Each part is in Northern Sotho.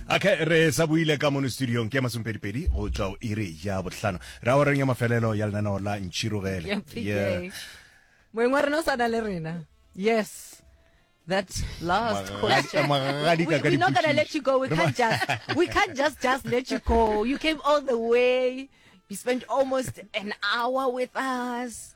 okay re sa buile ka mono studiong ke masompedipedi go tswa o iri ya botlhano ra o reng ya mafelelo ya lenaneo la ntšhirogele yeah. moeng wa rena o sana le rena yes that last question. we, we're not gonna let you go. We can't just we can't just just let you go. You came all the way. You spent almost an hour with us.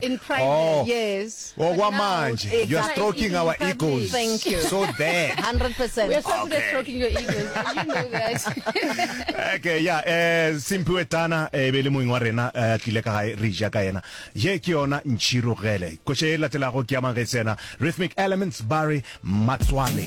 In private, oh. yes. Oh, what mind? Exactly. You're stroking our egos. Thank you. So there. 100%. We're so okay. stroking your egos. you know that. okay, yeah. Eh, Simpiwe Tana, eh, bele moeng wa rena, eh, tlile ka gae, re ja ka yena. Ye ke yona Nchiro Gele. Koše e latelago ke ya mang ge tsena. Rhythmic Elements, Barry Matswale.